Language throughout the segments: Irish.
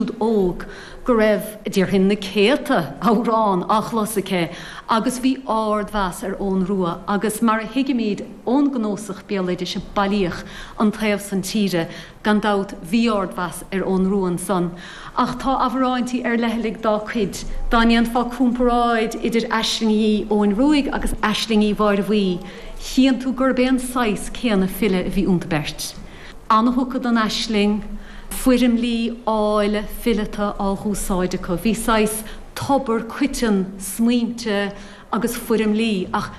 siúd óg go raibh, déarfainn, na céadta amhrán á chlos aici agus bhí ard-mheas ar Eoghan Rua agus mar a thuigimíd ón gcnósach béaloidis a bailíodh an taobh san tíre gan dabht bhí ard-mheas ar Eoghan Rua ansan ach tá amhráintí ar leithligh dá cuid. Dá ndéanfá cúmparáid idir aislingí Eoghain Ruaidh agus aislingí Mháire Bhuí chíonn tú gurb é an saghas céanna file a bhí ionta beirt. Ana-thugtha don aisling, foirmlí áille fileata á dh'úsáid acu. Bhí saghas tobar coiteann smaointe agus foirmlí ach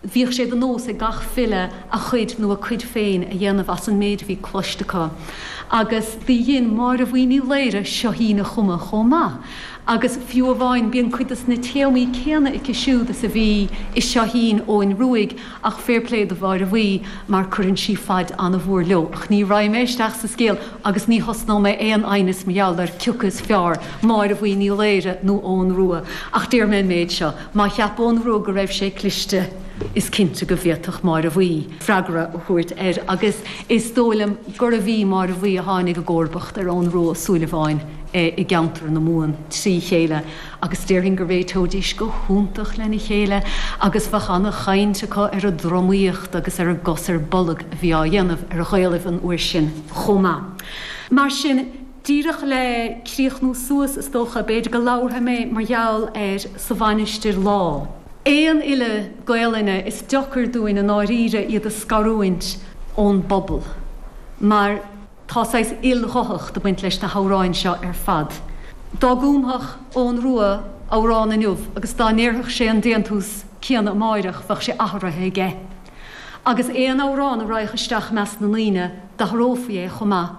bhíodh sé de nós ag gach file a chuid nó a cuid féin a dhéanamh as an méid a bhí cloiste acu. Agus do dhein Máire Bhuí Ní Laoire seoithín a chumadh chomh maith agus fiú amháin bíonn cuid des na téamaí céanna aici siúd is a bhí i seoithín Eoghain Ruaidh Ach fair play do Mháire Bhuí mar cuireann sí faid an-mhór leo. Ach ní raghaidh mé isteach sa scéal agus ní thosnóidh mé aon aighneas mar gheall ar cioca is feárr, Máire Bhuí Ní Laoghaire nó Eoghan Ruadh. Ach déarfaidh mé an méid seo, má cheap Eoghan Ruadh go raibh sé cliste is cinnte go bhféadfadh Máire Bhuí freagra a thabhairt air agus is dóigh liom gurbh í Máire Bhuí a tháinig i gcomharbacht ar Eoghan Ruadh Ó Súilleabháin i gceantar na Mumhan trí chéile. agus déarfainn go réiteoidís go hiontach lena chéile agus bheadh an-chaint acu ar an dtromaíocht agus ar an gcos ar bolg a bhí á dhéanamh ar Ghaelaibh an uair sin chomh maith. Mar sin, díreach le críochnú suas, is dócha, b'fhéidir go labharfaidh mé mar gheall ar Sa Mhainistir Lá. Aon fhile Gaelainne, is deocair dúinn i ndáiríre iad a scarúint ón bpobal, mar. Tá saghas ilghuthacht ag baint leis na hamhráin seo ar fad. Dá gcúmfadh Eoghan Rua amhrán inniu agus dá ndéarfadh sé an déantús céanna amáireach bheadh sé atharuithe aige. Agus aon amhrán a raghadh isteach i measc na ndaoine d'atharófaí é chomh maith.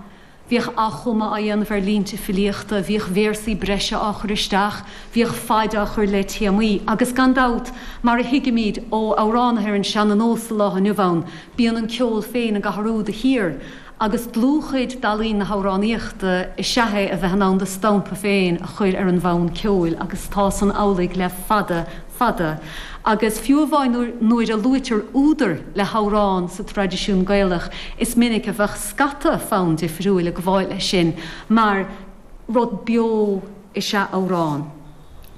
Bhíodh athchumadh á dhéanamh ar línte filíochta, bhíodh véarsaí breise á chur isteach, bhíodh faid á chur le téamaí agus gan dabht, mar a thuigimíd ó amhránaithe ar an seana-nós sa lá inniu ann, bíonn an ceol féin ag atharú de shíor. agus dlúthchuid d'ealaín na hamhránaíochta is ea é a bheith in ann do stampa féin a chur ar an bhfonn ceoil agus tá san amhlaidh le fada, fada agus fiú amháin nuair a luaitear údar le hamhrán sa traidisiún Gaelach is minic a bheadh scata fonn difriúil ag gabháil leis sin mar rud beo is ea amhrán.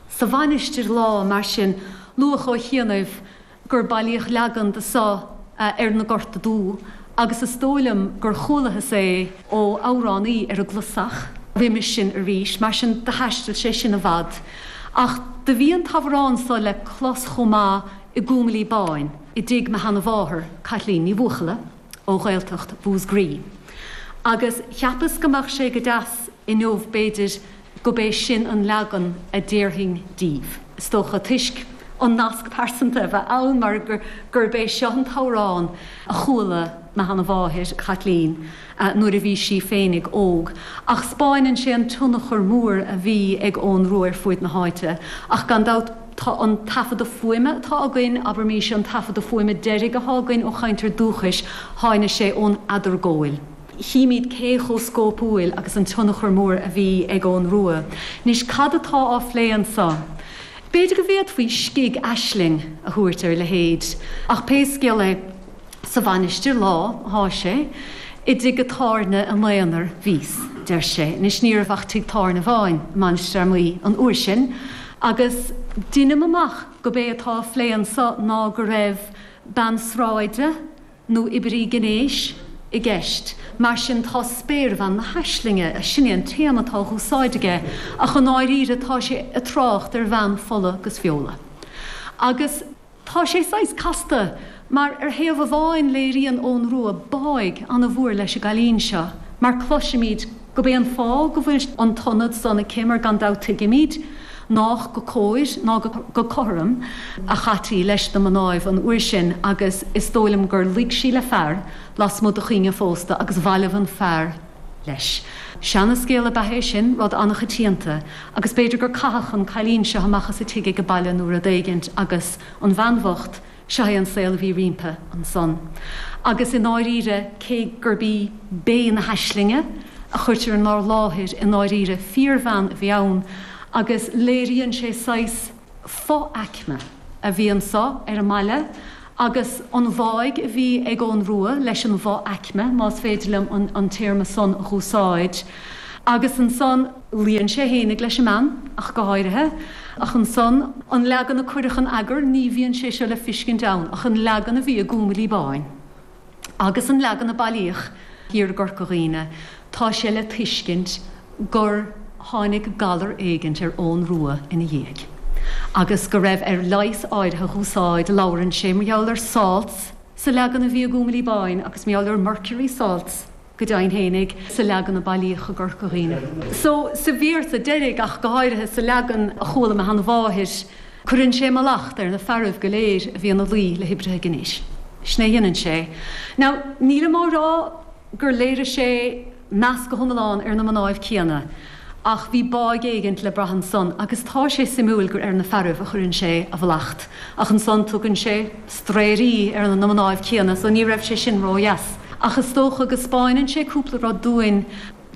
Sa Mhainistir Lá, mar sin, luadh ó chianaibh. gur bailíodh leagan de so ar na Gorta Dubha agus is dóigh liom gur chualathas é ó amhránaí ar an gClasach roimis sin arís, mar sin do thaisteal sé sin i bhfad. Ach do bhí an t-amhrán so le clos chomh maith i gCúm Uí Chlúmháin i dtigh mo sheana mháthar, Caitlín Ní Bhuachalla ó Ghaeltacht Mhúsgraí agus cheapas go mbeadh sé go deas inniu b'fhéidir, gurb é sin an leagan a déarfainn díbh, is dócha, toisc an nasc pearsanta a bheith ann mar gurb é seo an t-amhrán a chuala mo sheana mháthair, Caitlín, nuair a bhí sí féinig óg. Ach spáineann sé an tionchar mór a bhí ag Eoghan Rua ar fuaid na háite. Ach gan dabht tá an taifeadadh fuaime atá againn, abairimís é, an taifeadadh fuaime deiridh atá againn ó chainteoir dúchais, tháinig sé ón Eadargóil. chímíd cé chomh scópúil agus an tionchar mór a bhí ag Eoghan Rua. Anois, cad atá á phlé annso? B'fhéidir go bhféadfaí scig aisling a thabhairt ar a leithéid. Ach pé scial é, sa Mhainistir lá thá sé, i dtigh a' tábhairne im aonar bhíos, deir sé. Anois ní raibh ach tigh tábhairne amháin i Mainistir Fhear Maí an uair sin, agus deinim amach go b'é atá á phlé annso ná go raibh bean sráide, nó oibrí gnéis, i gceist. Mar sin tá spéirbhean na haislinge, sin é an téama atá a dh'úsáid aige, ach i ndáiríre tá sé a trácht ar bhean fola 'gus feola. Agus tá sé saghas casta, mar ar thaobh amháin léiríonn Eoghan Rua báidh ana mhór leis an gcailín seo, mar cloisimíd, Go b'é an fáth go bhfuil an t-ionad san aici mar gan dabht tuigimíd nách go cóir ná go cothrom a chaití leis na mnáibh an uair sin agus is dóigh liom gur luigh sí le fear lasmuigh do chuing an phósta agus bhailibh an fear leis. Seana-scéal ab ea é sin, rud an-choitianta, agus b'fhéidir gur caitheadh an cailín seo amach as a tigh age baile nó rud éigint agus an bhean bhocht Seo é an saol a bhí roimpi ansan. Agus i ndáiríre, cé gurb í Bé na hAislinge a chuirtear inár láthair, i ndáiríre fíorbhean a bhí ann agus léiríonn sé saghas fo-aicme a bhí anso ar an mbaile agus an bháidh a bhí ag Eoghan Rua leis an bhfo-aicme, más féidir liom an téarma san a dh'úsáid. Agus ansan. Luíonn sé fhéinig leis an mbean, ach go háirithe, ach ansan, an leagan a cuireadh in eagar, ní bhíonn sé seo le fiscint ann ach an leagan a bhí i gCúm Uí Chlúmháin, agus an leagan a bailíodh thiar i gCorca Dhuibhne, tá sé le tuiscint gur tháinig galar éigint ar Eoghan Rua ina dhiaidh, agus go raibh air leigheas áirithe dh'úsáid, labhrann sé mar gheall ar 'salts' sa leagan a bhí i gCúm Uí Chlúmháin, agus mar gheall ar 'mercury salts', go deimhin fhéinig, sa leagan a bailíodh i gCorca Dhuibhne seo, sa véarsa deiridh ach go háirithe, sa leagan a chuala óm sheana-mháthair, cuireann sé mallacht ar na fearaibh go léir a bhí ina luí le hoibrithe gnéis. Sin é a dheineann sé. Now, nílim á rá gur léirigh sé meas go hiomlán ar na mnáibh céanna, Ach bhí báidh éigint le brath annsan agus tá sé suimiúil gur ar na fearaibh a chuireann sé a mhallacht. Ach annsan tugann sé straerí ar na mnáibh céanna so ní raibh sé sin ró-dheas. Ach is dócha go 'spáineann sé cúpla rud dúinn.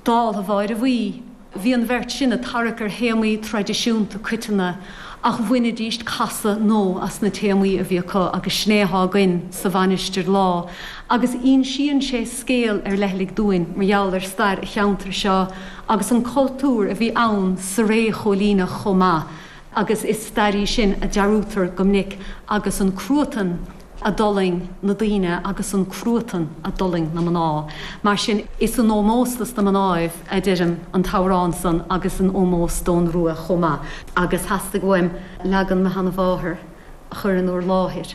Dála Mháire Bhuí, bhí an bheirt sin ag tarrac ar théamaí traidisiúnta coiteanna ach bhainidíst casadh nó as na téamaí a bhí acu agus sin é atá againn sa Mhainistir Lá agus ínsíonn sé scéal ar leithligh dúinn mar gheall ar stair a cheantair seo agus an cultúr a bhí ann sa ré chóilíneach chomh maith agus is stair í sin a dearúdtar go minic agus an cruatan a d'fhulaing na daoine agus an cruatan a d'fhulaing na mná. Mar sin is in ómós dos na mnáibh a deirim an t-amhrán san agus in ómós do'n Ruadh chomh maith agus theastaigh uaim leagan mo sheana-mháthar a chur in úr láthair.